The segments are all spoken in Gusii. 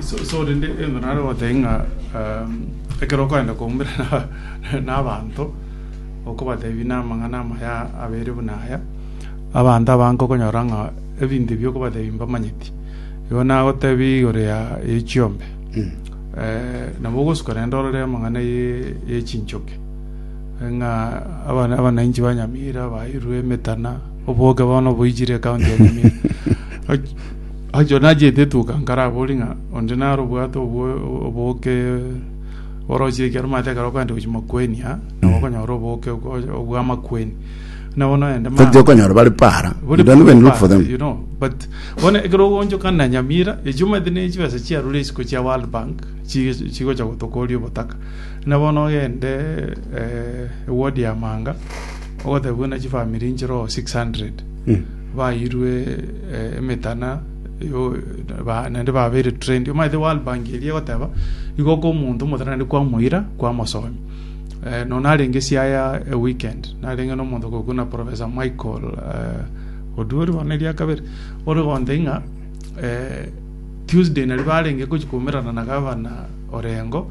So rende egento nare gotebia ng'a ekero okorenda koumera nabaanto, okobatebia namang'ana amaya abere buna aya, abanto abange okonyora ng'a ebinto ebi okobatebia mbamanyeti. Igo nagotebia igoro ya chiombe, nabo ogosuka rende orore amang'ana ye chinchoki, ng'a abanainchi ba Nyamira bairwe emetana, oboke bono oboichire ekaunti ya Nyamira. Achio nachete etuka nkarabori ng'a onde naro obwate obwo oboke oroche ekero omanyete ekero okoenda gochia makueni aa nabo okonyora oboke obwo- obw'amakueni nabo nogende ma- Toti okonyora bari para. You don't even look for them. you know but bono ekero ogonchokana na nyamira echi omanyete ne chibesa chiarure isiko chia world bank chi- chigocha gotokoria obotaka buna bono ogende eh, eward ya manga ogoteba buna chifamiri nchire oo 600 bairwe emetana naende babeire trained. Omanyete World Bank eria egoteba igo oka omonto omotana naende kwamoira kwamosomi. Eh, no narenge siaya a weekend narenge na omonto gokuna Professor Michael eh, Oduri bono eria kabere ore gonte ng'a eh, Tuesday nari barenge gochikomerana na gavana Orengo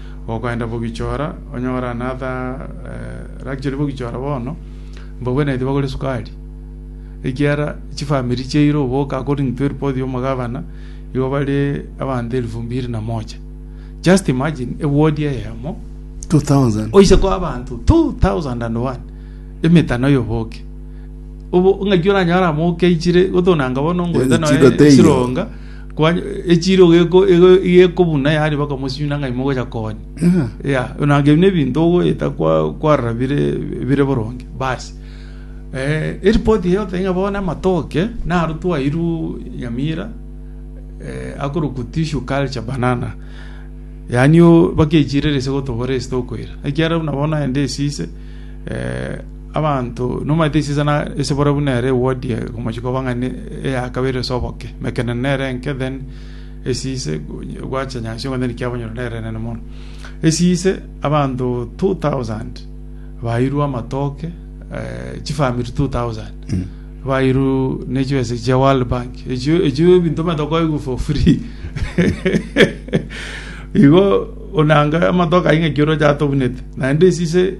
Gokoenda bogichora, onyore another luxury bogichora bono, mbogwenereti bagore esukari, ekiagera chifamiri chiaira oboke according to eripoti ya omogabana, igo bare abanto elfu mbiri na moja. Just imagine, eward eyemo, 2000 oise koa abanto 2001 emetano ya oboke. Obo ng'aki oranyore amo okeichire, gotonanga bono ngoeta Ebichigo noe teiyo. chironga, Kwa- echiro geko- ego- gekobuna yaani bakamosina ng'a imogocha konya ya nage buna ebinto ogoeta kwa- kwarora bire bire boronge basi Eh, eripoti eye egoteba ng'a bono amatoke naro twairwe nyamira eh, akorokwa tissue culture banana yaani o- bakechire ase gotobora ase tokoira ekiagera buna bono naende esise Abanto nomanyete esisana ase bore buna ere eward eye komochie koba ng'a ne eya kabere ase oboke emekenene nere enke then esise gwacha nyasae okonyora ekiabonyorwa nere enene mono. Esise abanto two thousand bairwe amatoke chi family two thousand bairwe ne chibesa echi chia world bank echio echio ebinto omanyete okoigwa for free igo onanga amatoke ayio ng'aki oroche atabunete naende esise.